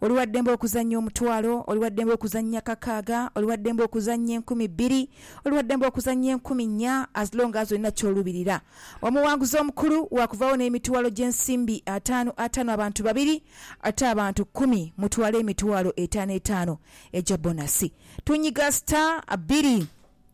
Oli wa ddembe okuzannya omutwalo, oli wa ddembe okuzannya kakaaga, oli wa ddembe okuzannya enkumi bbiri, oli wa ddembe okuzannya enkumi nnya, as long as olina ky'olubirira. Omuwanguzi omukulu waakuvaawo n'emitwalo gy'ensimbi ataanu ataanu abantu babiri, ate abantu kkumi mutwale emitwalo etaano etaano egya bonasi. Tunyiga star bbiri.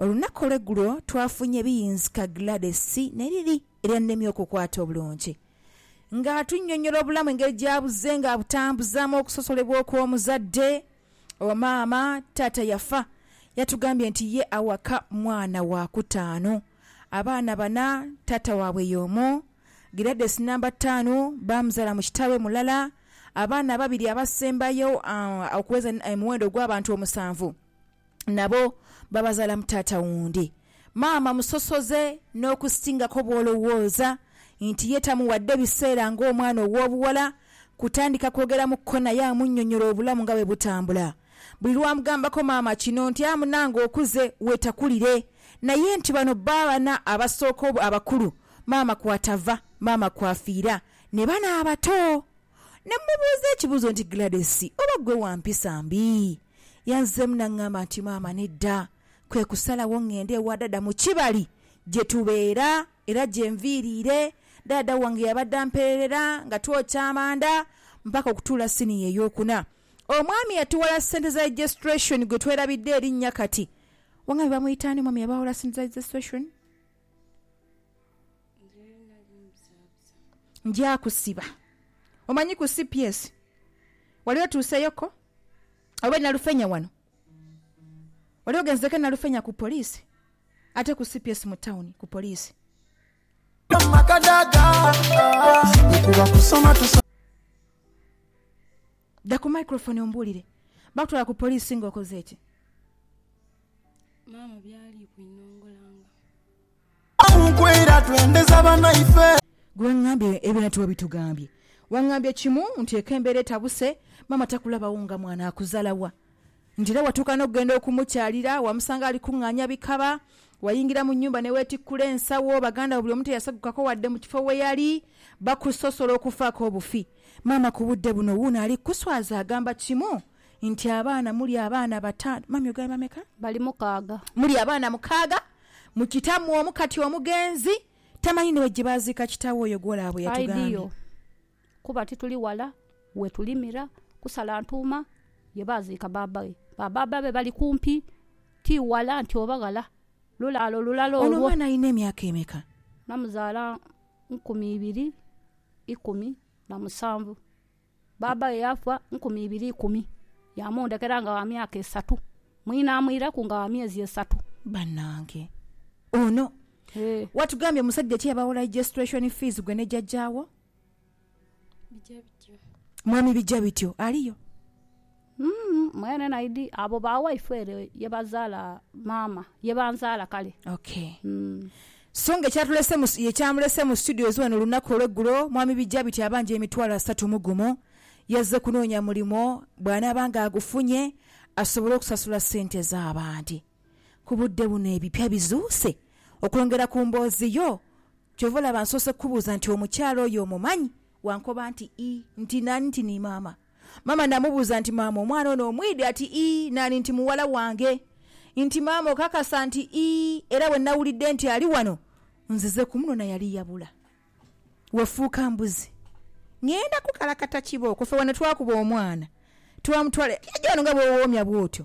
Olunaku olw'egulo twafunye ebiyinzika Gladys ne liri eryannemye okukwata obulungi. Nga atunnyonnyola obulamu engeri gy'abuze nga abutambuzaamu okusosolebwa okw'omuzadde owa maama, taata yafa, yatugambye nti ye awaka mwana wa kutaanu. Abaana bana taata waabwe y'omu. Gladys nnamba ttaanu baamuzaala mu kitaawe mulala. Abaana ababiri abasembayo okuweza omuwendo ogw'abantu omusanvu. nabo babazaala mu taata wundi. Maama musosoze n'okusingako bw'olowooza nti ye tamuwadde biseera ng'omwana ow'obuwala kutandika kwogera mu kkona ye amunnyonnyole obulamu nga bwe butambula. Buli lw'amugambako maama kino nti a munange okuze weetakulire naye nti bano baana abasooka abakulu maama kw'atava maama kw'afiira ne bano abato. Ne mmubuuza ekibuuzo nti, Gladys, oba ggwe wa mpisa mbi? Yanzeemu n'ang'amba nti, Maama, nedda. Kwe kusalawo ng'ende ewa Daada mu Kibali gye tubeera era gye nviiriire. Daada wange yabadde ampeerera nga twokya amanda mpaka okutuula siniya ey'okuna. Omwami yatuwola ssente za registration gwe twerabidde erinnya kati. Wangambye bamuyita ani omwami yabawola ssente za registration? Nja kusiba. Omanyi ku cps wali otuuseyo ko? Oba e Nalufenya wano? Wali ogenzeeko e Nalufenya ku poliisi? Ate ku cps mu tawuni ku poliisi? Dha ku microphone ombuulire. Bakutwala ku poliisi nga okoze ki? maama by'ali kwinongolanga. Gwe wangambye ebirala tiwabitugambye. Wangambye kimu nti ek'embeera etabuse maama takulabagho nga mwana akuzala wa? Nti era watuuka n'okugenda okumukyalira, wamusanga ali kung'aanya bikaba, wayingira mu nnyumba ne weetikkula ensawo, baganda bo buli omu teyasegukako wadde mu kifo we yali, bakusosola okufaako obufi. Maama ku budde buno wuuno ali kukuswaza agamba kimu Nti, Abaana, muli abaana bataanu. Mummy ogambye bameka? Bali mukaaga. Muli abaana mukaaga. Mu kitammwe omu kati omugenzi tamanyi ni we gye baaziika kitaawe oyo gw'olaba bwe yatugambye. Ideal. Kuba tituli wala we tulimira, kusala ntuuma ye baaziika baaba we. Ba baaba be bali kumpi, ti wala nti oba ghala. Lulaalo lulala olwo. Ono omwana alina emyaka emeka? Namuzaala nkumi ibiri ikumi na musanvu. Bbaabaghe yaafa nkumi ibiri ikumi, yaamundhekera nga wa myaka esatu, mwine amwireku nga wa myezi esatu. Banange ono watugambye omusajja ki eyabawo ligestration fees gwe ne jajja wo? Mwami Bijabityo aliyo? Mwenhe naidi abo ba waifu ere ye bazaala maama, ye banzaala kale. Ok. So nga ekyatulese mu, ekyamulese mu studios ghano olunaku olw'eggulo, Mwami Bijabiti abanja emitwalo asatu mu gumu. Yazze kunoonya mulimo, bw'anaaba nga agufunye, asobole okusasula ssente z'abandi. Ku budde buno ebipya bizuuse? Okwongera ku mboozi yo, ky'ova olaba nsoose kukubuuza nti omukyala oyo omumanyi? Wankoba nti ii, nti naani, nti ni maama. Maama naamubuuza nti, Maama, omwana ono omwidhi? Ati, Ii. Naani? Nti, Muwala wange. Nti, Maama, okakasa? Nti, Ii. Era bwe nawulidde nti ali wano, nzize kumunona. Yali yabula. Wafuuka mbuzi. Ng'enda kukalakata kibooko. Ffe wano twakuba omwana, twamutwala. Yajja wano nga bw'owoomya bw'otyo.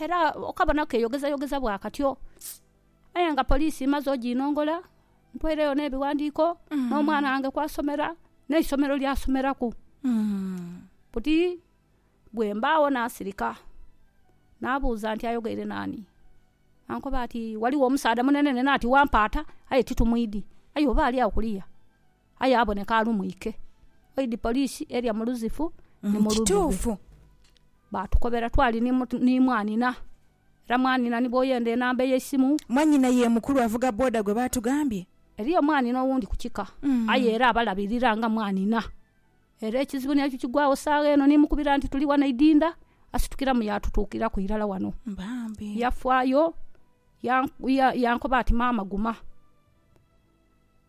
era okabonaku keyogezayogeza bwa katyo. Aye nga poliisi mmaze oginongola, ntwaireyo n'ebighandiiko, n'omwana wange kwasomera, n'eisomero lyasomeraku. Buti bwe mbaagho naasirika, naabuuza nti ayogeire naani? Ankoba ati, Ghaligho omusaadha munene nenati wampaata, aye titumwidhi. Aye oba ali agho kuliya. aye aboneka alumwike. Oidhi poliisi eria mu Luzifu ni mu Lubigho. Baatukobera twali ni mwanhina era mwanhina ni bw'oyenda enamba ey'eisimu. Mwanhina ye mukulu avuga boda gwe baatugambye? Eriyo omwanhina owundi ku kika aye era abalabirira nga mwanhina. Era ekizibu ni ekyo kigwagho saagha eno ni mukubira nti tuli wano Idinda, asitukiramu yaatutuukiraku irala wano. Yafaayo yankoba ati, Maama guma.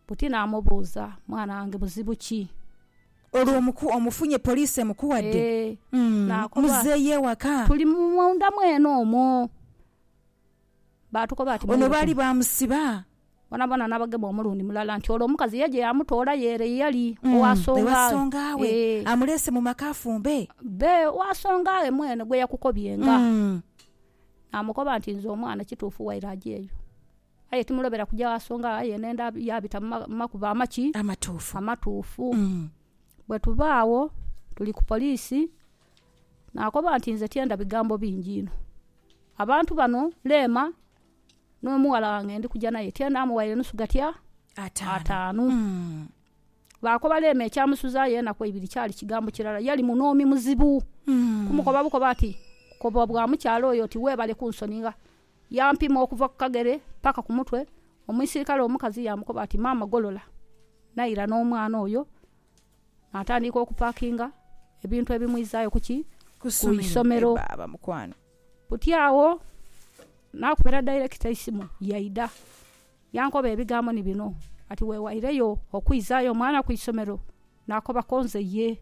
Buti naamubuuza, Mwana wange buzibu ki? Olwo omuku omufunye poliisi emukuwadde? Eeh, Umm, naakoba. Muzeeyo ewaka. Tuli munda mwene omwo. Baatukoba ati, Ono baali Mwiruke. baamusiba. Boonaboona naabagema omulundi mulala nti olwo omukazi ye gye yaamutoolayo ere ye yali Umm, owa songa ewa ghe. songa we. Eeh. Amuleese mu maka afumbe. Bbe wa songa ghe mwene gwe yakukobyenga. Umm. Naamukoba nti, Nze omwana kituufu waire aje eyo. Aye timulobera kuja gha songa yena enda yaabita mu makubo amaki? Amatuufu. Amatuufu. Bwe tuva agho, tuli ku poliisi, naakoba nti, Nze tyenda bigambo bingi inho. Abantu bano, Leema n'omughala wange ndi kuja naye, tyenda mughaire nusu gatya? Ataanu. Baakoba Leema ekyamusuzaayo enaku eibiri kyali kigambo kirala. Yali munoomi muzibu. Kumukoba bukoba ati, Koba bwa mukyala oyo oti, Weebale kunsoninga. Yaampima okuva ku kagere paka ku mutwe. Omuisirikale omukazi yaamukoba ati, Maama golola. Naira n'omwana oyo naatandiika okupakinga ebintu ebimwizaayo ku ki? Ku isomero. Buti agho naakubira dairekita eisimu yaidha. Yankoba ebigambo ni bino ati, Weewaireyo okwizaayo omwana ku isomero? Naakoba konze, Ye.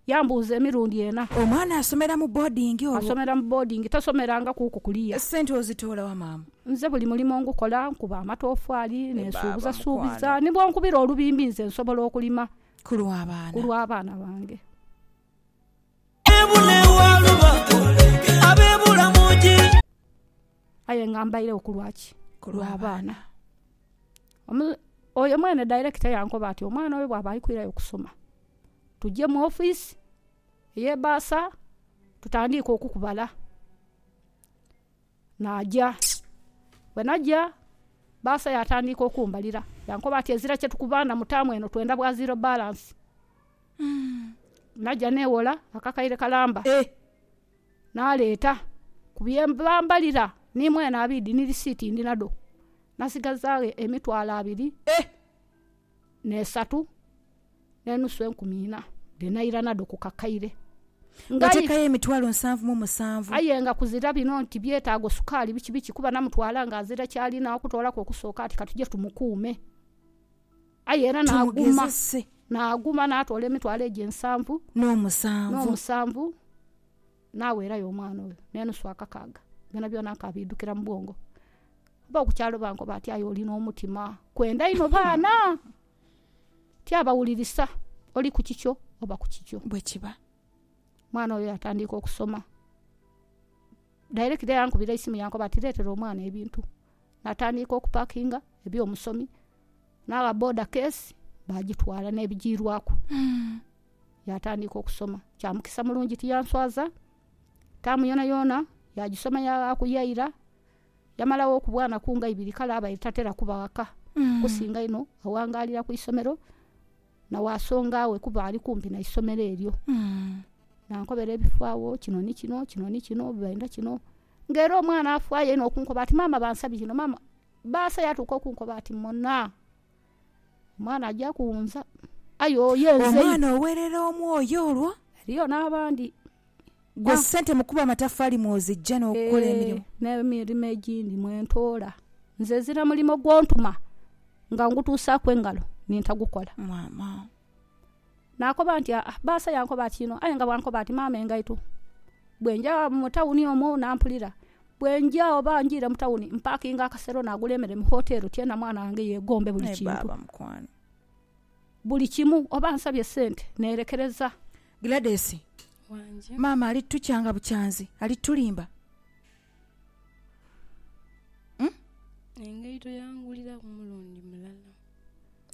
Yambuuza emirundi ena. Omwana asomera mu boodingi olwo? Asomera mu boodingi, tasomeranga kuku kuliya. Sente ozitoola wa maama? Nze buli mulimo ngukola, nkuba amatoofaali, ninsuubuzasuubiza, ni bwonkubira olubimbi nze nsobola okulima ku lw'abaana bange. Aye nga mbairegho ku lwa ki? Ku lwa baana. Oyo mwene dairekita yankoba ati, Omwana oyo bw'aba ali kwirayo kusoma, tuje mu ofisi ey'ebbaasa tutandiike okukubala. Naaja. Bwe naja, bbaasa yaatandiika okumbalira. Yankoba ati, Ezira kye tukubanda mu taamu eno, twenda bwa ziro balansi. Naja neewola akakaire kalamba. Naleeta, ku bye bambalira ni mwene abiidhi ni lisiiti ndi nadho, nasigazaagho emitwalo abiri n'esatu n'enusu enkumi ina, dhe naira nadho ku kakaire. Nateekayo emitwalo nsanvu mu musanvu. Aye nga kuzira bino nti byetaago sukaali biki biki, kuba namutwala ng'azira ky'alina okutoolaku okusooka ati katuje tumukuume. Aye era naaguma, naaguma naatoola emitwalo egyo ensanvu n'omusanvu, naaweerayo omwana oyo n'enusu akakaaga, byonabyona nkaabiidhukira mu bwongo. Ab'oku kyalo bankoba ati, Aye oli n'omutima kwenda inho baana! Tyabawulirisa, oli ku kikyo oba ku kikyo. Omwana oyo yaatandiika okusoma. Director yankubira eisimu yaankoba ati, Leetera omwana ebintu. Natandiika okupakinga ebyomusomi nagha boda kesi bagitwala nebijiirwaku yatandiika okusoma. Kyamukisa mulungi tiyanswaza taamu yonayona yagisoma yaghaku yaira yamala ghoku bwanaku nga ibiri kale abaire tatera kuba ghaka kusinga inho aghangalira kwisomero. Nawaasonga we kuba ali kumpi na isomero eryo. Nankobera ebifo agho, kino ni kino, kino ni kino, bainda kino. Ng'era omwana afaayo inho okunkoba ati, Maama bansabye kino, maama. Baasa yatuuka okunkoba ati, Mona! Omwana aja kuwunza. Aye oyo yenze inho. Omwana owerera omwoyo olwo. Eriyo n'abandi. Gwe Ga. ssente mu kukuba amataffaali mw'ozijja n'okukola Eeh, emirimu? n'emirimo egindi mwe ntoola. Nze ezira mulimo gw'ontuma nga ngutuusaaku engalo ni ntagukola. Maama. Naakoba nti, Aa, bbaasa yankoba ati inho, aye nga bw'ankoba ati maama engaito. Bwe nja mu tawuni omwo n'ampulira. Bwe nja oba njiire mu tawuni, mpaakinga akasero naagula emere mu hoteero tyena mwana wange yeegombe buli Aye kintu. baaba mukwano. Buli kimu oba ansabye sente nerekereza. Gladys, Wange. Maama ali tukyanga bukyanzi, ali tulimba. Umm. Engaito yangulira ku mulundi mulala.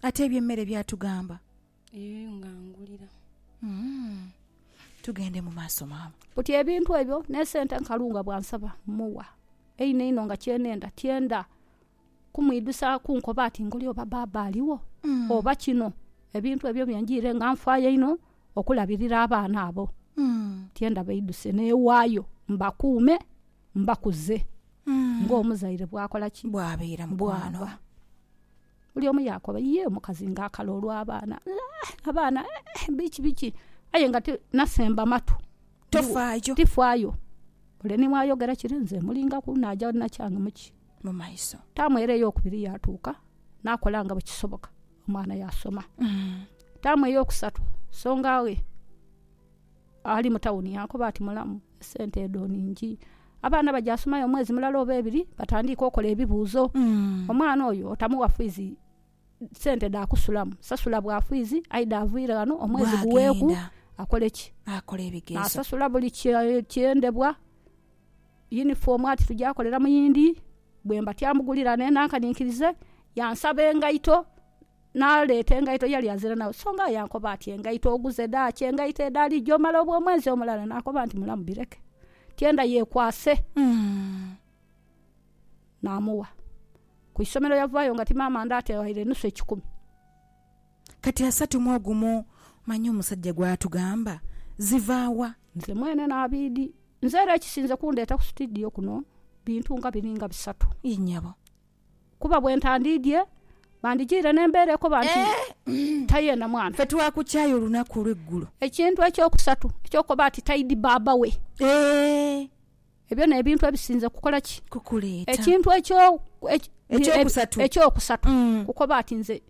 Ate ebye mmere byatugamba. Eyo nga angulira. Umm. Tugende mu maaso maama. Buti ebintu ebyo ne sente nkalu nga bwansaba muwa. Eino eino nga kyenenda, tyenda kumwidhusaaku nkoba ati ngoli oba baaba aligho oba kino. Ebintu ebyo byenjiire nga nfaayo inho okulabirira abaana abo. Tienda baidhuse neewaayo mbakuume, mbakuze ng'omuzaire bwakola ki? Bwaba. Buli omu yaakoba, ye omukazi ng'akala olw'abaana, abaana eeh biki biki aye nga nasemba matu. Tifaayo. Ole ni bwayogera kire nze mmulingaku, naja nakyange mu ki? mu maiso. Taamu era ey'okubiri yaatuuka, naakola nga bwe kisoboka, omwana yaasoma. Taamu ey'okusatu, songa ghe ali mu tawuni yaakoba ati, Mulamu, esente edho nhingi. Abaana bagyasomayo omwezi mulala oba ebiri, batandiike okola ebibuuzo. Omwana oyo otamuwa fiizi sente dha kusulamu, sasula bwafwizi aidha avaire ghano omwezi guweeku akole ki? Asasula buli kyendebwa, yunifoomu ati tuja kolera mu yindi, bwe mba tyamugulira ne nankaninkirize, yansaba engaito, naleeta engaito yali azira nagho. So nga aye ankoba ati engaito oguze dha ki? Engaito edho ali gye omala obwo omwezi omulala? Nakoba nti mulamu bireke. Tyenda yeekwase. naamuwa. Ku isomero yavaayo nga ti maama ndaate waire nusu ekikumi. Kati asatu mu ogumu manya omusajja gw'atugamba ziva wa? Nze mwene Naabidhi. Nze era ekisinze kundeeta ku situdiyo kuno bintu nga biri nga bisatu. Yii nyabo. Kuba bwe ntandiidhie bandijiire n'embeera ekoba nti tayenda mwana. Ffe twakukyaaya olunaku olw'eggulo. Ekintu eky'okusatu eky'okukoba ati taidi baaba we. Eeh! Ebyo n'ebintu ebisinze kukola ki? Kukuleeta. Ekintu ekyo, eki, Eky'okusatu. eky'okusatu, Mm. kukoba ati, Nze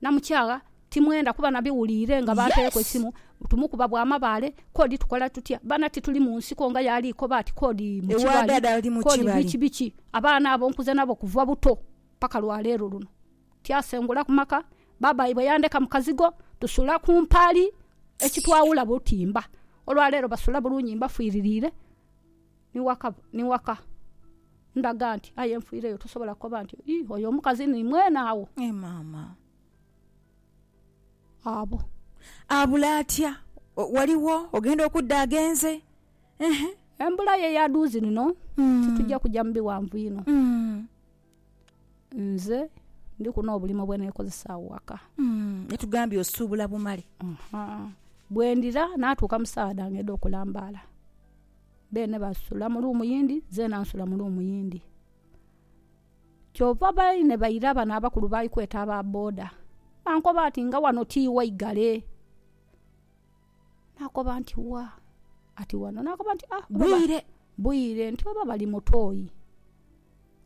namukyagha timwenda kuba nabiwuliire nga banteereku Yes. eisimu, tumukuba bwa mabaale, kodi tukola tutya? Baana tituli mu nsiko nga y'ali koba ati kodi mu Ewa kibali, dada ali mu kodi kibali. biki biki. Abaana abo nkuze nabo kuva buto paka lwa leero luno. Tyasengula ku maka, baaba waibwe yandheka mu kazigo, tusula ku mpaali ekitwawula butimba. Olwa leero basula bulungi mbafiiririire ni waka. Ndhaga nti aye nfiireyo tosobola kukoba nti, Ii, oyo omukazi ni mwene agho. Ee maama. Abo. Abula atya? Waliwo ogenda okudda agenze? Ehe. Embula ye ya dhuuzi lino titugya kugya mu bighanvu inho. Nze ndiku n'obulimo bwe neekozesa agho ghaka. Naye tugambire osuubula bumale. Bwe ndira naatuuka mu saawa dhange edh'okulambaala, beene basula mu ruumu yindi, zeena nsula mu ruumu yindi. Kyova baine baira bano abakulu ba li kweta aba boda, bankoba ati nga ghano ti ighai ghale. Naakoba nti, Wa? Ati, Wano. Naakoba nti, Ah, oba ba. Bwire. Bwire. Nti, Oba bali mu toyi.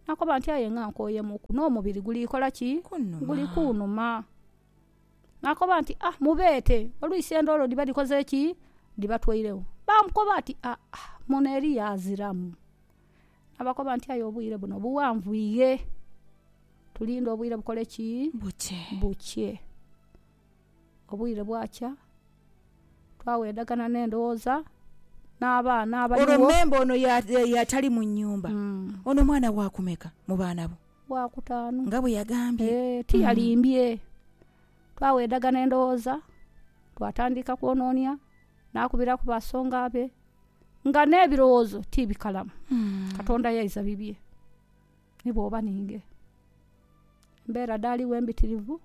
Naakoba nti, Aye nga nkooyemuuku. N'omubiri guli kola ki? Kunhuma. Guli kunhuma. Naakoba nti, Ah, mubeete. Olwisi endoolo dhiba dhikoze ki? Dhibatweiregho. Baamukoba ati, Aa, muno eriyo aziramu. Naabakoba nti, Aye obwire buno bughanvu ighe. Tulinde obwire bukole ki? Bukye. Bukye. Obwire bwakya, twawedhagana n'endhoghoza n'abaana abaliwo. Olwo memba ono y'atali mu nnyumba, ono mwana wa kumeka mu baana bo? Wa kutaanu. Nga bwe yagambye. Ee, tiyalimbye. Twawedhagana endhoghoza, twatandika kwononia, naakubiraku basonga be, nga n'ebirowoozo ti bikalamu. Katonda yaiza bibye. ni bw'oba ninge. Embeera dhaaligho embitirivu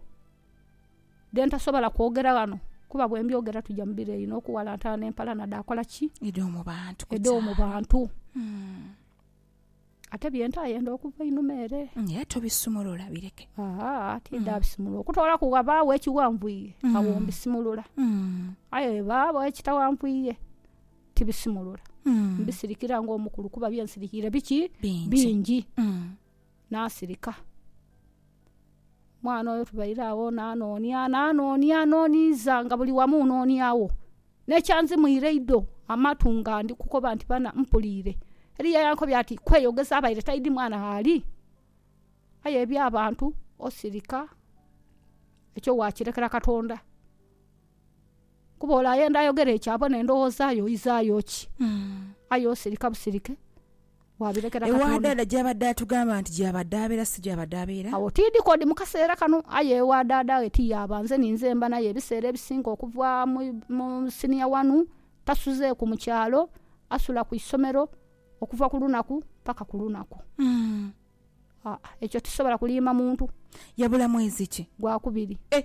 dhe ntasobola kwogera ghano kuba bwe mbyogera twidha mu biro eyo okuwalantana n'empalana dhaakola ki? Edh'omu bantu. Ate bye ntaayenda okuva einhuma ere. Aye tobisumulula bireke. Aa, tidhaabisumulula. Okutoolaku ghabaagho ekighanvwire, agho mbisimulula. Aye bwe ghabaagho ekitaghanvwire. tibisimulula. Mm. Mbisirikira ng'omukulu kuba bye nsirikiire biki? Bingi. Bingi. Mm. Naasirika. Mwana oyo tubaire agho naanoonia, naanoonia, nooniiza nga buli wamu nooniagho. N'ekyanzimwire einho amatu nga ndi kukoba nti bana mpuliire, eriyo eyankobye ati, Kweyogeza abaire taidhi mwana gh'ali. Aye eby'abantu osirika, ekyo waakirekera Katonda. Kuba ole ayenda ayogera ekyo abo n'endhoghoza ye oizaayo ki? Aye osirika busirike, waabirekera Ewa Katonda. dhaadha gy'abadde atugamba nti gy'abadhaabira si gy'abadhaabiira. Agho tiidhi k'odi mu kaseera kano, aye ewa dhaadha ghe ti yaaba. Nze ni nze mba naye ebiseera ebisinga okuva mu mu siniya wanu. Tasuzeeku mu kyalo, asula ku isomero okuva ku lunaku paka ku lunaku. Aa, ekyo tisobola kuliima muntu. Yabula mwezi ki? Gwakubiri. Eh!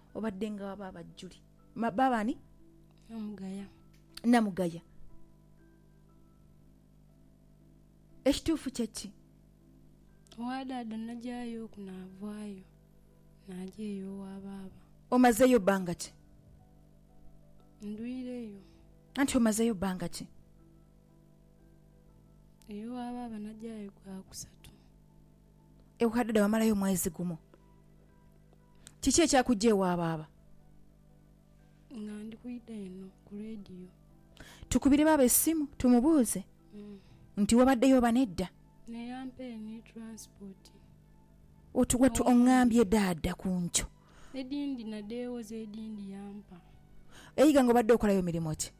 obadde nga waba abajjuli Ma- baaba ani Namugaya. namugaya ekituufu kyeki Owa daada nagyayo oku naavaayo nagya eyo owa baaba. omazeeyo bbanga ki Ndwireyo. anti omazeeyo bbanga ki Ey'owa baaba nagyayo gwa kusatu. ewa daada wamalayo mwezi gumu Kiki ekyakujja ewa baaba? Nga ndi kwidha eno ku leediyo. Tukubire baaba essimu tumubuuze nti wabaddeyo oba nedda. Ne yampa eno e tulansipooti. Watu ongambye daada ku nkyo. Edhindi nadheewoza edhindi yampa. Eiga nga obadde okolayo mirimo ki?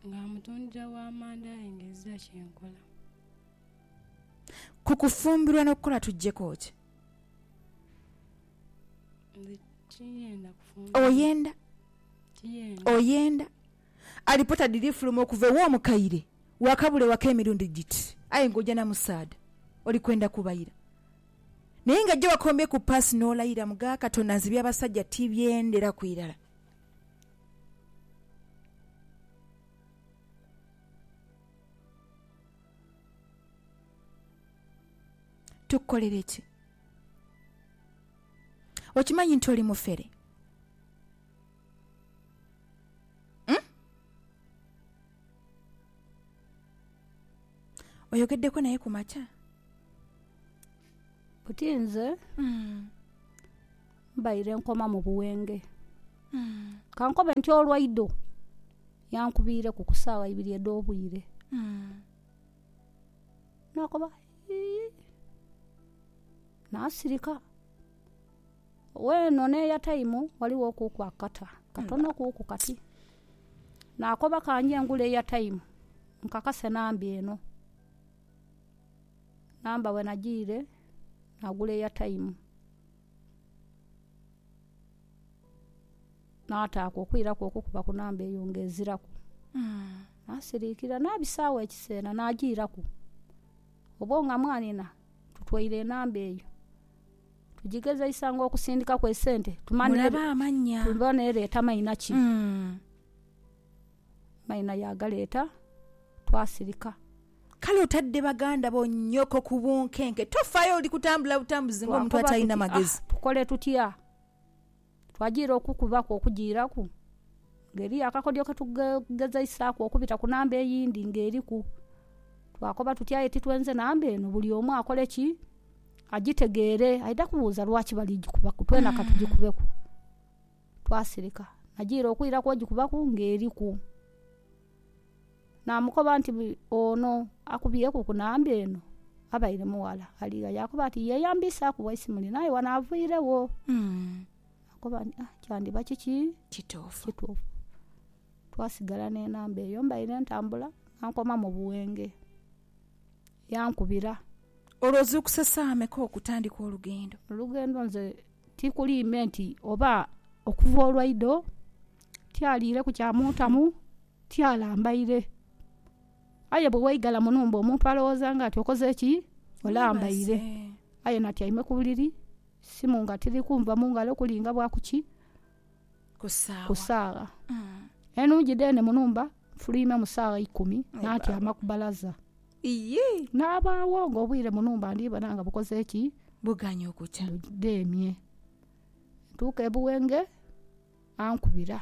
Nga mutundira wa manda aye nga ezira kye nkola. Ku kufumbirwa n'okukola tuggyeko ki? Oyenda? Oyenda? Alipota dhiri fuluma okuva ew'omukaire waakabula ewaka emirundi giti, aye ng'oja na musaadha oli kwenda kubaira. Naye nga gye wakombye ku paasi n'olayira mu ga Katonda nze eby'abasajja tibyenderaku irala. tukukolere ki? Okimanyi nti oli mufere? Hmm? Oyogeddeko naye ku makya? Oti nze hmm. mbaire nkoma mu buwenge hmm. kankobe nti olwaido yankubiireku ku saawa ibiri edh'obwire hmm. Nakoba yii nasirika. Weeno neya taimu ghaligho okuuku akakata katono kuuku kati. Nakoba kange ngule eya taimu nkakase namba eno. Namba bwenagiire nagula eya taimu. Naataaku okwiraku okukuba ku namba eyo ng'eziraku. Naasiriikirira naabisaagho ekiseera naagiiraku. Obwo nga mwanhina tutwaire enamba eyo. Tugigezeisa ng'okusindikaku esente tumanye oba n'ereeta maina ki. Maina yaagaleeta, twasirika. Kale otadde baganda bo nnyoko ku bunkenke. Tofaayo oli kutambula butambuzi ng'omuntu atalina magezi. Twakooba tuti, Ah tukole tutya? Twajiira okukubaku okujiiraku nga eriyo akakodyo ketugezeisaaku okubita ku namba eyindi nga eriku. Twakoba tuti aye titwenze namba eno buli omu akole ki? Agitegeere. Aidha kubuuza lwaki bali gikubaku, twena ka tugikubeku. Twasirika. Najiira okwiraku ogikubaku nga eriku. Naamukoba nti, Ono akubyeku ku namba eno abaire mughala ali gha? Yaakoba ati, Yeeyambiisaaku Waisimuli naaye wano avwiregho. Naakoba nti, Ah, kyandiba kiki? Kituufu. Twasigala n'enamba eyo. Mbaire ntambula nga nkoma mu Buwenge, yankubira. Olwo ozuukuse saawa meka okutandika olugendo? Olugendo nze tikuli ime nti oba okuva olwaido, tialiireku kya muntamu. Tyalambaire. Aye bwe waigala mu nhumba omuntu alowooza nga ati okoze ki? Olambaire. Aye natyaime ku buliri, simu nga tiri kunva mu ngalo kuli nga bwa ku ki? Ku saagha. Enhungi dheene mu nhumba nfuluimemu saagha ikumi natyama ku balaza. Nabaagho ng'obwire mu nhumba ndi bona nga bukoze ki? Budheemye. Ntuuka e Buwenge ankubira.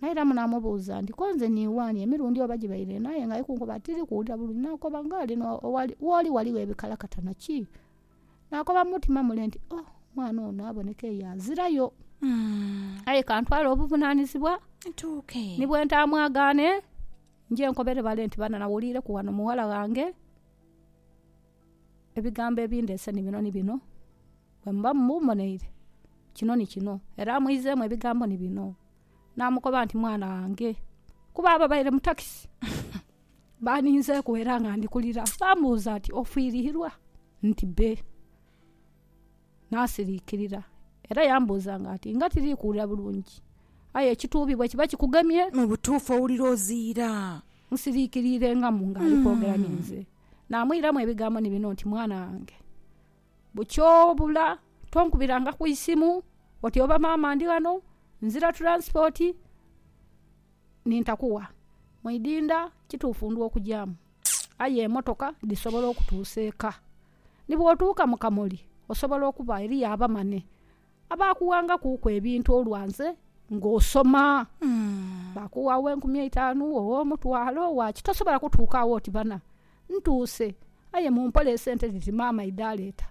Naira munaamubuuza nti, Konze ni wani? Emirundi oba gibaire ena aye ng'ali kunkoba ati, Tiri kuwulira bulungi. Naakoba, Ng'ali no, owali, woli ghaligho ebikalakatana. Ki? Naakoba mu mutima mule nti, Oh, mwana ono aboneka eyo azirayo. Aye ka ntwale obuvunaanizibwa, Ntuuke. ni bwe ntaamwagaane, nje nkobere bale nti, Bana, nawuliireku ghano mughala ghange. Ebigambo ebindeese ni bino ni bino, bwe muba mumboneire, kino ni kino. Era amwizeemu ebigambo ni bino, naamukoba nti, Mwana wange. Kuba ababaire mu takisi baaninzeeku era nga ndi kulira, baamubuuza nti, Ofiirihirwa? Nti, Be. Naasiriikirira. Era yambuuzanga nti, Nga tiri kuwulira bulungi? Aye ekituubi bwe kiba kikugemye. Mu butuufu owulira oziira. Musiriikiriire nga mu ng'ali kwogera ninze. Naamwiramu ebigambo ni bino nti, Mwana wange, bukyobula tonkubiranga ku isimu oti oba maama ndi ghano, nzira tulansipooti, ni ntakuwa mwidinda. Kituufu ndwa okujaamu, aye emotoka dhisobola okutuusa eka. Ni bw'otuuka mu Kamoli osobola okuba eriyo abamane Abaakughangakuuku ebintu olwa nze ng'osoma, baakuugha ow'enkumi eitanu, ow'omutwalo, owa ki, tosobola kutuuka agho oti, Bana, ntuuse, aye mumpole esente dhiti maama idhaleeta.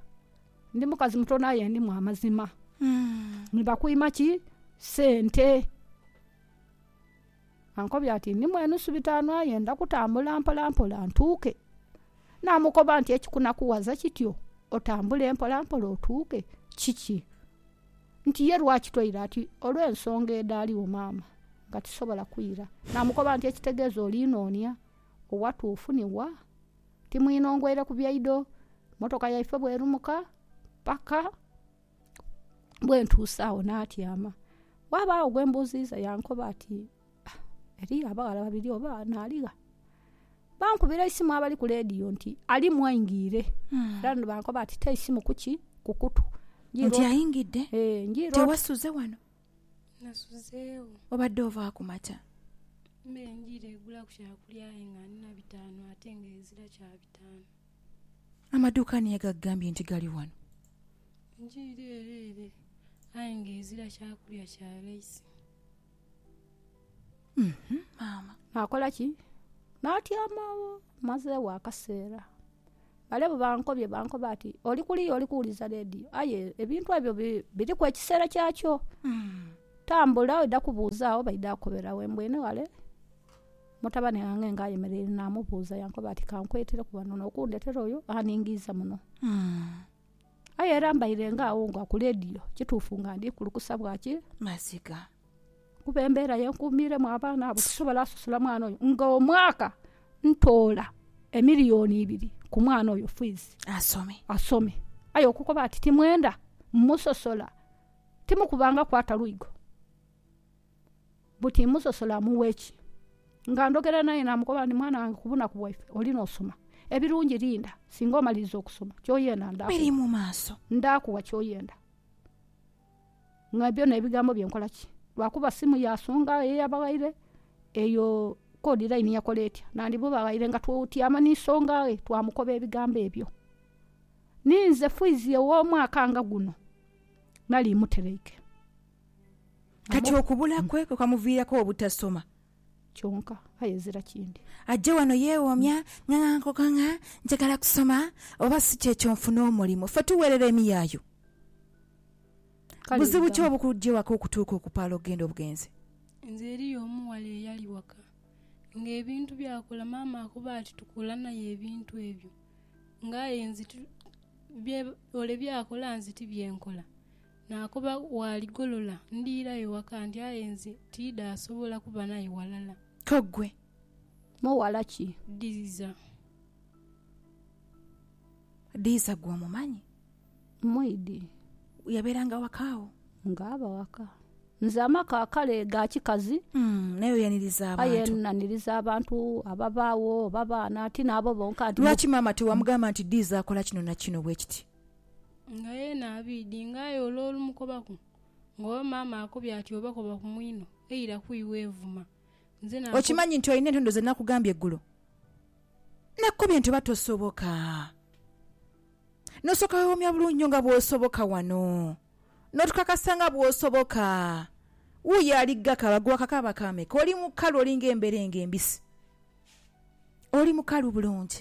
Ndi mukazi mutono aye ndimu amazima. Ni bakwima ki? Sente. Ankobye ati, Ndimu enusu bitaanu aye ndha kutambula mpolampola ntuuke. Naamukoba nti, Ekikunakughaza kityo otambule mpolampola otuuke kiki? Nti, Ye lwaki toire? Ati, Olw'ensonga edhaaliwo maama nga tisobola kwira. Naamukoba nti, Ekitegeeza oli noonia owatuufu ni wa? Ti mwine ongweire ku byaidho? Mmotoka yaife bw'erumuka paka. Bwentuuse agho naatyama. Ghabaagho gwe mbuuziiza yankoba ati, Ah, eriyo abaghala babiri oba naaligha? Bankubira eisimu abali ku leediyo nti alimu aingiire. Era ni bankoba ati ta eisimu ku ki? Ku kutu. Njiira Nti ot- aingidde? Eh, njiira ot- Tewasuze wano? Nasuzeewo. Obadde ova ku makya? Me njiira egulaku kyakulya aye nga ndina bitaanu ate nga ezira kya bitaanu. Amaduuka ani yagakugambye nti gali wano? Enju iri ere ere, aye nga ezira kyakulya kya raisi. Maama. Naakola ki? Naatyama agho. Mmazeegho akaseera. Bale bwe bankobye, bankoba ati, Oli kuliya oli kuwuliza leediyo. Aye ebintu ebyo biriku ekiseera kyakyo. Tambula oidha kubuuza agho baidha kukobera we mbwine ghale. Mutabane ghange ng'ayemeleire naamubuuza, yankoba ati, Kankwetereku ghano n'okundhetera oyo aningiiza muno. Aye era mbaire ng'agho nga ku leediyo, kituufu nga ndi kulukusa bwaki? Maziga. Kuba embeera ye nkuumiiremu abaana abo tisobola sasula mwana oyo. Nga omwaka ntoola emiliyoni ibiri ku mwana oyo fiizi. Asome. Asome. Aye okukoba ati timwenda musosola, timukubangaku ata lwigo. buti musosola mughe ki? Nga ndhogera naye naamukoba nti, Mwana wange ku bunaku bwaife oli n'osoma. Ebirungi linda singa omaliriza okusoma, ky'oyenda ndaakuwa. Biri mu maaso. Ndaakuwa ky'oyenda. Nga byona ebigambo bye nkola ki? Lwakuba simu yaasonga ye yabaghaire, eyo kodi layini yakola etya? Nandimubaghaire nga tutyama ni nsonga ghe twamukoba ebigambo ebyo. Ninze fwizi ow'omwaka nga guno nali muteraike. Kati okubula kwe kwe kwamuviiraku obutasoma. Kyonka aye ezira kindi. Aje wano yeewoomya nga nga nkoko nga njagala kusoma oba si kyekyo nfune omulimu. Ffe tuweerera emiyaayu. Kale Buzibu ki ebigambo. obukujja ewaka okutuuka okupaala okugenda obugenzi? Nze eriyo omughala eyali waka nga ebintu byakula maama akuba ati tukuula naye ebintu ebyo nga aye nze ti bye ole byakola nze tibyenkola Naakoba waaligolola, ndiirayo waka ndi aye nze tiidaasobola kuba naye walala. Kyo ggwe mughala ki? Dhiza. Dhiza gwe omumanyi? Mwidhi. Yabeeranga waka agho? Nga aba waka. Nze amaka kale ga kikazi. Naye oyaniriza abantu? Aye naniriza abantu ababaagho oba baana, ti naabo bonka nti. Lwaki maama tiwamugamba nti Dhiza akola kino na kino bwe kiti? Nga yeena abiidhi, nga aye ole olumukobaku, nga oba maama akobye ati oba koba ku mwinho, eira ku iwe evuma. Nze na. Okimanyi nti olina entondo ze nakugambye eggulo? Nakukobye nti oba tosoboka, n'osooka weewomya bulungi nnyo nga bw'osoboka wano, n'otukakasa nga bw'osoboka. Wuuyo ali ghakaaba, ggwe wakakaaba kaameka? Oli mukalu, olinga emberenge embisi. Oli mukalu bulungi.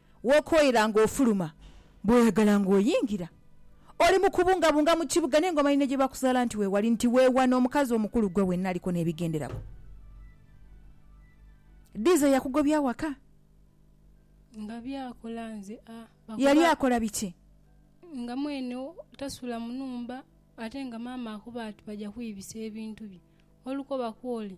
W'okooyera ng'ofuluma, bw'oyagala ng'oyingira. Oli mu kubungabunga mu kibuga naye ng'omanyi ne gye baakuzaala nti weewali, nti weewano omukazi omukulu ggwe wenna aliko n'ebigenderako. Diiza yakugobya awaka? Nga byakola nze a. Yali akola biki? Nga mwene tasula mu nhumba ate nga maama akuba ati baja kwibisa ebintu bye olukoba kw'oli.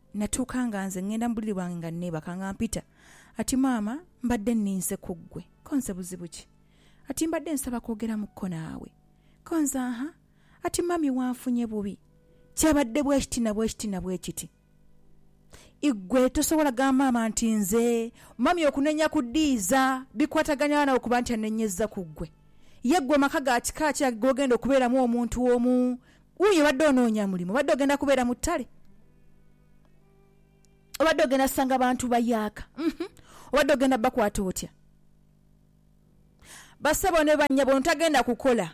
Natuuka nga nze ngenda mu buliri bwange nga nneebaka nga mpita. Ati, Maama, mbadde nninze ku ggwe. Ko nze, Buzibu ki? Ati, Mbadde nsaba kwogeramuko naawe. Ko nze, Aha. Ati, Mummy wanfunye bubi. Kyabadde bwe kiti na bwe kiti na bwe kiti. Iggwe tosobola gamba Maama nti nze, Mummy okunenya ku Diiza bikwatagana gha nawe kuba nti annenyezza ku ggwe? Ye ggwe amaka ga kika ki ago g'ogenda okubeeramu omuntu omu Wuuyo obadde onoonya mulimu, obadde ogenda kubeera mu ttale, obadde ogenda sanga bantu bayaaka, uhmm obadde ogenda bakwata otya? Basebo ni bannyabo ono tagenda kukola,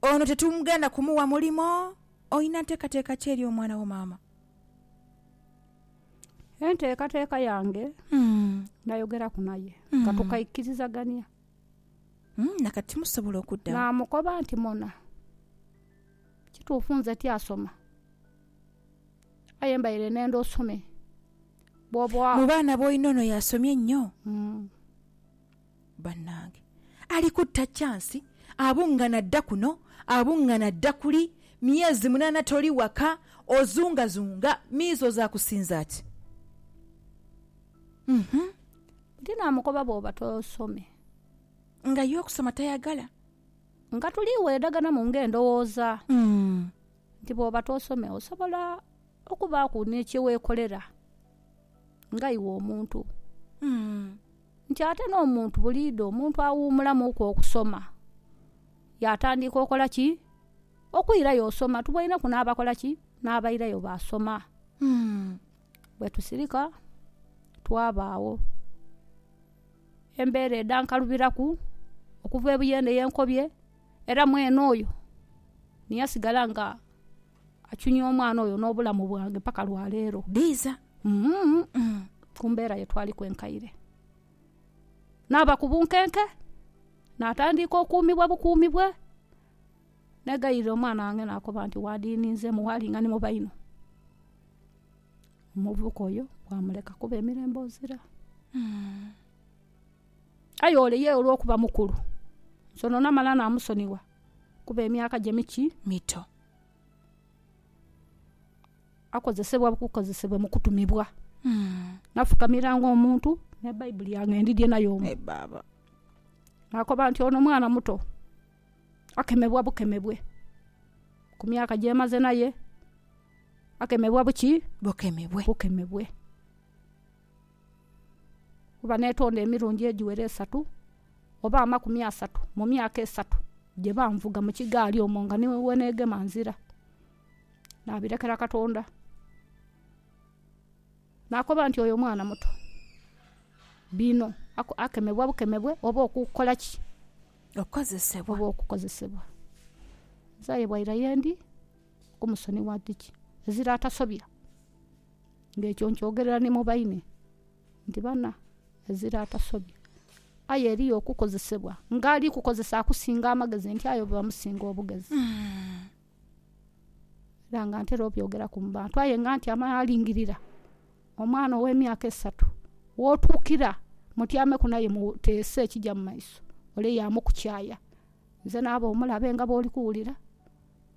ono tetugenda kumuwa mulimo, olina nteekateeka ki eri omwana wo maama? Enteekateeka yange nayogeraku naye nga tukaikirizagania Na kati timusobola okudda wa? Naamukoba nti, Mona, kituufu nze tiasoma, aye mbaire neenda osome. Bw'oba. Mu baana b'olina ono y'asomye ennyo? Bannange! Ali kutta kyansi, abungana adda kuno, abungana adda kuli, myezi munaana toli waka, ozungazunga, miizo zaakusinza ki? Uhmm. Nti naamukoba bw'oba tosome. Nga ye okusoma tayagala. Nga tuli weedhaganamu ng'endhowooza. Nti bw'oba tosome osobola okubaaku ni kye weekolera nga iwe omuntu. Nti ate n'omuntu buliidho omuntu awuumulamuku okusoma yaatandiika okola ki? Okwirayo osoma. Tuboineku n'abakola ki? N'abairayo baasoma. Bwe tusirika twabaagho embeera edhankalubiraku okuva ebuyo eno yenkobye era mwene oyo ni yasigala nga achunya omwana oyo n'obulamu bwange paka lwa leero. Dhiiza. Ku mbeera ye twaliku enkaire. Naaba ku bunkenke, natandiika okuumibwa bukuumibwe. Negayirira omwana wange nakoba nti wadininze mughala nga ni muba inho. Omuvubuka oyo wamuleka kuba emirembe ozira. Aye ole ye olwokuba mukulu nsono namala namusonigha kuba emyaka gye miki, mito. Akozesebwa bukozesebwa mu kutumibwa. Nafukamiranga omuntu ni Baibuli yange ndidye nayo omwo. Nakoba nti ono mwana muto. akemebwa bukemebwe ku myaka gy'emaze naye, akemebwa buki? Bukemebwe. Bukemebwe. Kuba neetonda emirundi egiwera esatu oba amakumi asatu mu myaka esatu gye banvuga mu kigaali omwo nga ni we neegema nzira. Nabirekera Katonda. Naakoba nti, Oyo mwana muto. Bino akemebwa bukemebwe oba okukola ki? okukozesebwa. Oba okukozesebwa. Nze aye bwaira ye ndi ku musoni wa dhiki ezira atasobya, nga ekyo nkyogerera ni mu baine nti bana ezira atasobya. Aye eriyo okukozesebwa nga ali kukozesa akusinga amagezi nti aye oba omusinga obugezi. Era nga ntera obyogeraku mu bantu aye nga ntyama nalingirira omwana ow'emyaka esatu w'otuukira mutyaameku naye muteese ekija mu maiso, ole yaamukukyaaya. Nze naaba omulabe nga bw'oli kuwulira,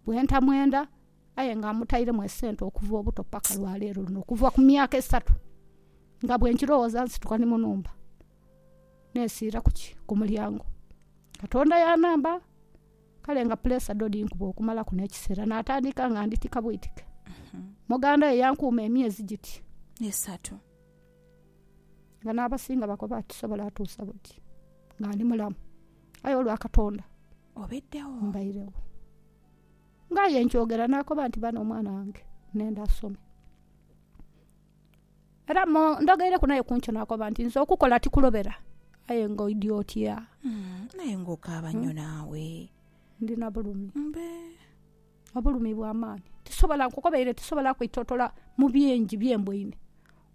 bwe ntamwenda aye nga mmutairemu esente okuva obuto paka lwa leero luno, okuva ku myaka esatu. Nga bwe nkirowooza nsituka ni mu nhumba nesiira ku ki? Ku mulyango. Katonda yanhamba. Kale nga puleesa dho dhinkuba okumalaku n'ekiseera, naatandika nga ndhitika bwitike. Moganda ye yankuuma emyezi giti. Esatu. Nga n'abasinga bakoba ati sobola atuusa buti nga ndi mulamu. Aye olwa Katonda. Obeddegho. Mbairegho. Ng'aye nkyogera naakoba nti ba n'omwana wange nenda asome. Era mo- ndhogeireku naye ku nkyo naakoba nti, Nze okukola tikulobera, aye ng'oidhi otya? Mm, Aye ng'okaaba nnyo naawe. Ndi na bulumi, Mbe. obulumi bwa maani. Tisobola, nkukobeire, tisobola kwetootola mu bingi bye mboine.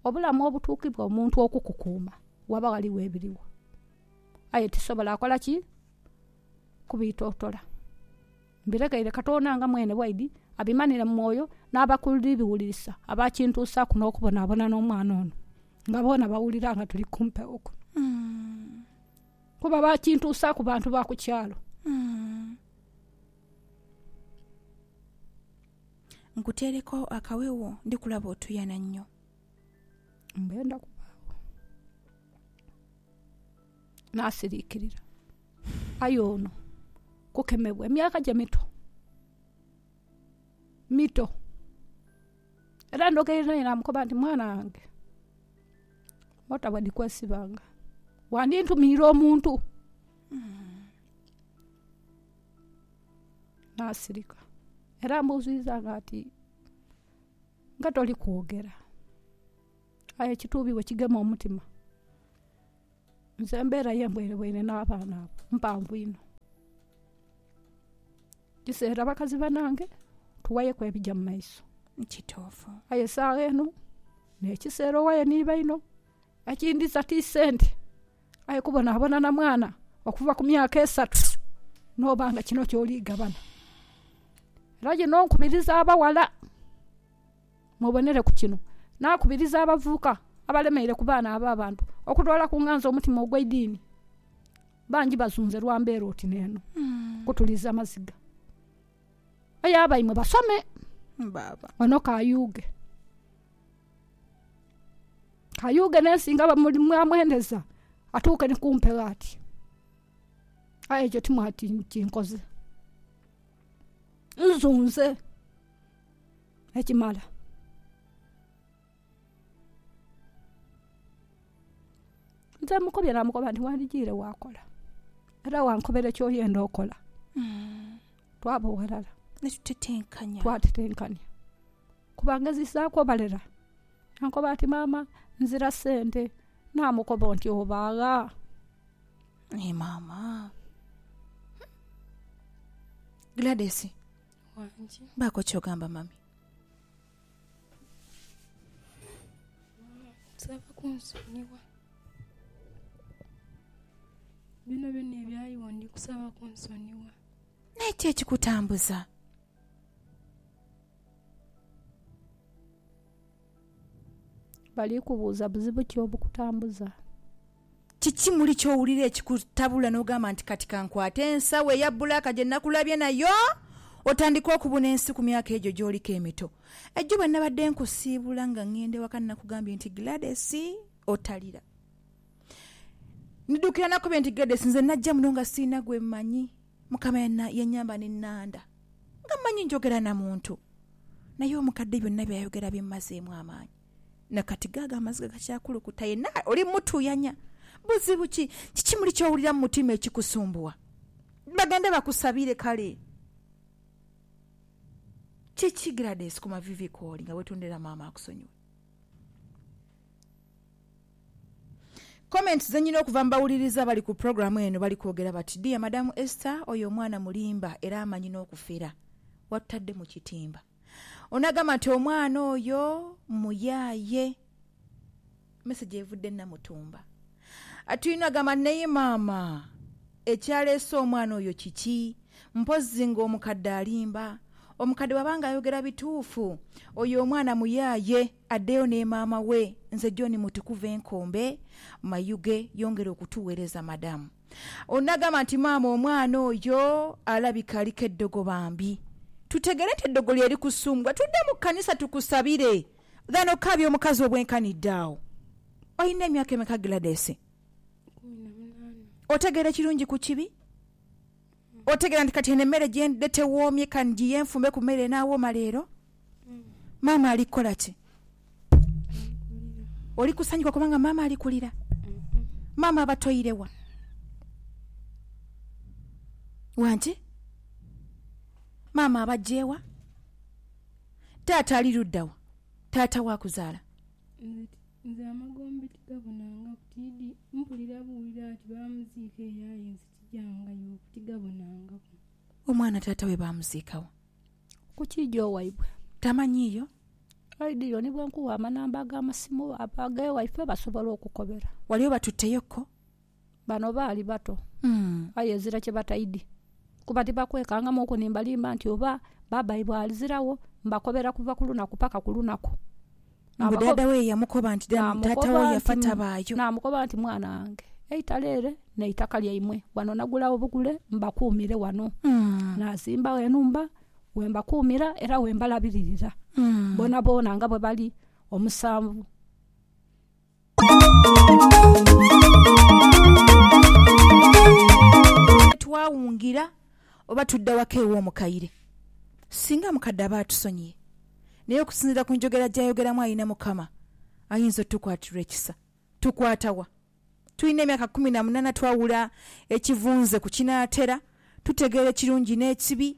Obulamu obutuukibwa omuntu okukukuuma, ghaba ghaligho ebirigho. Aye tisobola kola ki? Kubitootola. Mbiregeire Katonda nga mwene bwaidhi abimanhire mu mwoyo, n'abakuli biwulirisa abaakintuusaaku n'okubonabona n'omwana ono, nga boona bawulira nga tuli ku mpewo kuno. Kuba baakintuusaaku bantu ba ku kyalo. Nkuteereku akawewo, ndi kulaba otuyana nnyo. Mbe ndakubaagho. n'asiriikirira. Aye ono kukemebwa emyaka gye mito, mito. Era ndhogeire naye naamukoba nti mwana wange mota bwe dhikwesibanga wandintumiire omuntu. Naasirika era ambuuziiza nga ati nga toli kwogera? Aye ekituubibwa kigema omutima. Nze embeera ye mbwerebwere na baana abo mpanvu inho. Kiseera bakazi banange tuwayeku ebija mu maiso. Kituufu. Aye saagha eno nekiseera owaye ni baino. Ekindhiza ti sente, aye kubonabona na mwana okuva ku myaka esatu noba nga kino kyoli gabana. Era ye nonkubiriza abawala. Mwebonere ku kino, naakubiriza abavubuka abalemeire ku baana ab'abantu okutoola ku nganzi omutima ogw'eidiini. Bangi bazunze lwa mbeera oti n'eno. Kutuliza maziga. Aye abaimwe basome. Baaba. Ono kayuughe. Kayuughe n'ensi nga bamuli- mwamwendeza, atuuke ni ku mpewo ati, Aye ekyo timwati nkinkoze. Nzunze. ekimala. Nze mukobye namukoba nti wandijiire wakola era wankobere kyoyenda okola Mm. twaba ghalala Netutetenkanya. twatetenkania kuba ngezisaaku obalera yankoba ati maama nzira sente namukoba nti obaagha Naye maama. Gladys. wange. Baako ky'ogamba mami. Nsaba kunsonyiwa. Byonabyona ebyaliwo ndi kusaba kunsonyiwa. Naye ki ekikutambuza? Bali kubuuza buzibu ki obukutambuza. Kiki muli ky'owulira ekikutabula n'ogamba nti, Kati ka nkwate ensawo eya bbulaaka gye nakulabye nayo otandike okubuna ensi ku myaka egyo gy'oliko emito? Ejjo bwe nabadde nkusiibula nga ngenda ewaka nakugambye nti, Gladys, otalira. Ndidukira nakubye nti, Gladys, nze najja muno nga sirina gwe mmanyi. Mukama yannyamba ne nnanda. Nga mmanyi njogera na muntu. Naye omukadde byonna by'ayogera bimmazeemu amaanyi. Na kati gaago amaziga gakyakulukuta, yenha oli mutuuyanya. Buzibu ki? Kiki muli ky'owulira mu mutima ekikusumbuwa? Bagende bakusabire kale. Kiki Gladys ku maviivi kw'oli nga weetondera maama akusonyiwe? Comments ze nnyina okuva mu bawuliriza abali ku pulogulaamu eno bali kwogera bati, Dear Madam Esther, oyo omwana mulimba era amanyi n'okufera. Watutadde mu kitimba. Onagamba nti omwana oyo muyaye. Message evudde Namutumba. Atwine agamba nti naye maama ekyaleese omwana oyo kiki? Mpozzi nga omukadde alimba? Omukadde bwaba nga ayogera bituufu oyo omwana muyaye addeyo ne maama we. Nze John Mutukuvu enkombe mayuge yongera okutuwereza madam. Ono nagamba nti maama omwana oyo alabika aliko eddogo bambi tutegere nti eddogo lyerikusumbuwa tudde mu kanisa tukusabire than okaabya omukazi obwenkanidde awo Olina emyaka emeka Gladys? Kumi na munaana. Otegeera ekirungi ku kibi? Otegeera nti kati eno emmere gye ndidhe tewoomye ka ngiye nfumbe ku mmere enaawooma leero? Maama ali kukola ki? Oli kusanyuka kubanga maama ali kulira? Maama aba toire wa? Wangi? Maama abajje wa? Taata ali ludda wa? Taata wa kuzaala? Nze amagombe tigabonanga butiidi, mpulira buwulira ati baamuziika eyo aye nze Tijangayo ku tigabonangaku. Omwana taata we baamuziika wa? Ku kiijoo waibwe. Tamanyiiyo? Oidhieyo ni bwe nkuwa amanamba ag'amasimu ag'ewaifo basobole okukobera. Wali obatutteyo ko? Bano baali bato aye ezira kye bataidhi kuba tibakwekangamuuku ni mbalimba nti oba baabaibwe aziragho. Mbakobera kuva ku lunaku paka ku lunaku. Mbu dhaadha we yamukoba nti taata wo yafa tabaayo. Naamukoba nti, Mwana wange, eitale ere n'eitaka lyaimwe. Wano nagula obugule mbakuumire wano. Naazimba enhumba we mbakuumira era we mbalabiririra boonaboona nga bwe bali omusanvu. Twawungira oba tudda waka ew'omukaire, singa mukadde aba atusonyiye. Naye okusinziira ku njogera gy'ayogeramu alina Mukama ayinza otukwatirwa ekisa. Tukwata wa? Tulina emyaka kumi na munaana twawula ekivunze ku kinaatera, tutegeera ekirungi n'ekibi.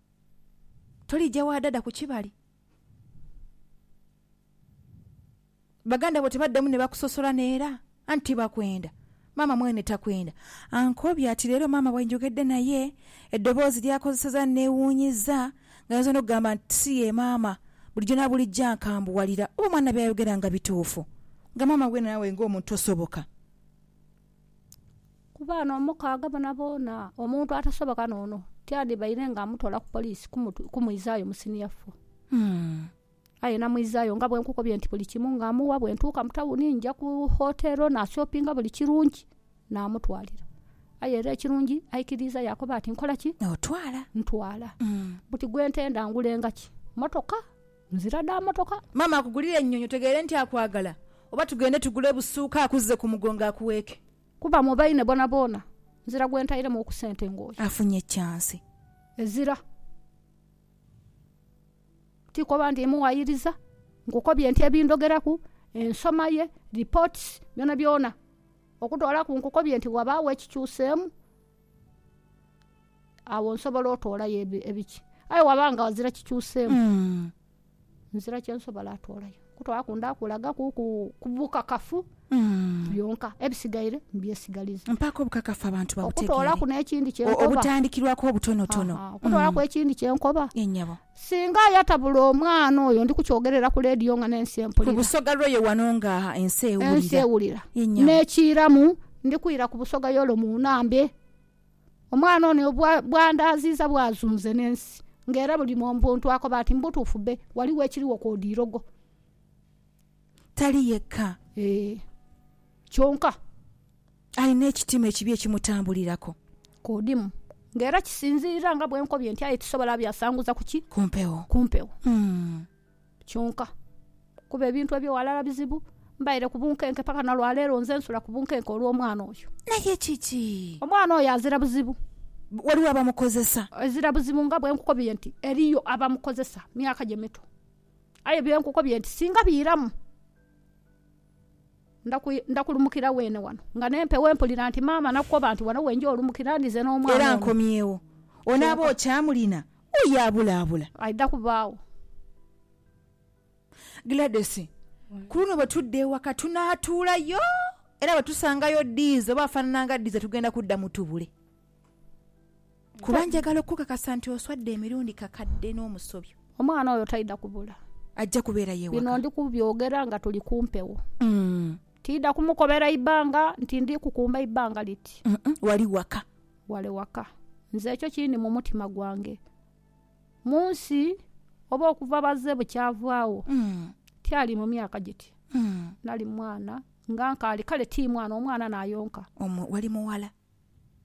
Tolija wa dada ku kibali. Baganda bo tebaddamu ne bakusosola n'era anti bakwenda. Maama mwene takwenda. Ankobye ati leero maama bwe njogedde naye, eddoboozi ly'akozesezza linneewuunyizza ng'ayinza n'okugamba nti si ye maama. Bulijjo na bulijjo ankambuwalira oba omwana by'ayogera nga bituufu. Nga maama we naawe ng'omuntu tosoboka. Ku baana omukaaga boonaboona, omuntu atasoboka n'ono tyandibaire nga amutwala ku poliisi kumwizaayo mu siniya fo. Aye namwizaayo nga bwe nkukubye nti buli kimu nga amuwa. Bwe ntuuka mu tawuni nja ku wotero nashopinga buli kirungi, namutwalira. Aye era ekirungi aikiriiza yaakoba ati, Nkola ki? Otwala. Ntwala. Buti gwe ntenda ngulenga ki? Mmotoka? Nzira dha motoka. Maama akugulire ennyonyi otegeere nti akwagala oba tugende tugule busuuka akuzze ku mugongo akuweeke. Kuba mu baine boonaboona. Nzira gwe ntairemu oku sente ng'oyo. Afunye kyansi. Ezira. Ti koba ndi muwayiriza. Nkukobye nti ebindhogeraku, ensoma ye, reports, byonabyona okutoolaku nkukobye nti ghabagho ekikyuseemu. Agho nsobola otoolayo ebiki? Aye bwaba nga ghazira kikyuseemu, nzira kye nsobola atoolayo. Kutoolaku ndaakulaga kuku ku bukakafu byonka, ebisigaire mbyesigaliza. Mpaako obukakafu abantu babutegeere. Okutoolaku n'ekindi kye nkoba. Obutandikirwaku obutonotono. Aha, okutoolaku ekindi kye nkoba. Ye nyabo. Singa ayatabula omwana oyo, ndi kukyogerera ku leediyo nga n'ensi empulira. Ku busoga lw'oyo wano nga ensi ewulira. Ensi ewulira. Ye nyabo. N'ekiiramu, ndi kwira ku busoga y'ole mu Naambe. Omwana ono bw'andaaziiza bw'azunze n'ensi, nga era buli muntu akoba ati, Mu butuufu be, ghaligho ekirigho kw'odha irogo. Tali yekka. Ee. Kyonka. Alina ekitima ekibi ekimutambuliraku. Kw'odimu. Nga era kisinziira nga bwe nkobye nti, aye tisobola byasanguza ku ki? Ku mpewo. Ku mpewo. kyonka, kuba ebintu ebyo ghalala bizibu. Mbaire ku bunkenke paka na lwa leero nze nsula ku bunkenke olw'omwana oyo. Naye kiki? Omwana oyo azira buzibu. Ghaligho abamukozesa? Azira buzibu nga bwe nkukobye nti eriyo abamukozesa, myaka gye mito. Aye bye nkukobye nti singa biiramu. Nda kulumukira weene wano. Nga n'empewo empulira nti maama nakukoba nti wano wenja olumukira ndize n'omwana ono. Era nkomyewo. Onaaba okyamulina? Oyo abulaabula. Aidha kubaagho. Gladys, Ku luno bwe tudda ewaka tunaatuulayo era bwe tusangayo Diiza oba afaanana nga Diiza tugenda kudda mutubule. Kuba njagala okukukakasa nti oswadde emirundi kakadde n'omusobyo. Omwana oyo taidha kubula. Ajja kubeerayo ewaka. Bino ndi kubyogera nga tuli ku mpewo. Tiidha kumukobera ibanga nti ndi kukumba ibanga liti. Wali waka. Wale waka. Nze ekyo kiri mu mutima gwange. Mu nsi oba okuva baze bukyavaagho, tyali mu myaka giti. Nali mwana, nga nkaali, kale ti mwana, omwana n'ayonka. Wali mughala.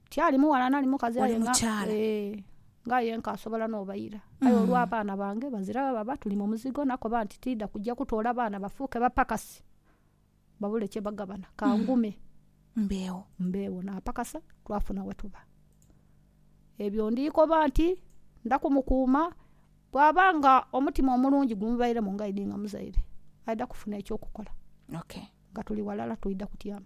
Tiali mughala nali mukazi aye nga ee nga aye nkasobola n'obaira. Aye olw'abaana bange bazira gha baba tuli mu muzigo nakoba nti tiidha kuja kutoola baana bafuuke bapakasi babule kye bagabana ka ngume mbeegho. Naapakasa twafuna we tuba. Ebyo ndi koba nti nda kumukuuma bw'aba nga omutima omulungi gumubairemu nga idi nga muzaire aidha kufuna eky'okukola nga tuli ghalala twidha kutyama.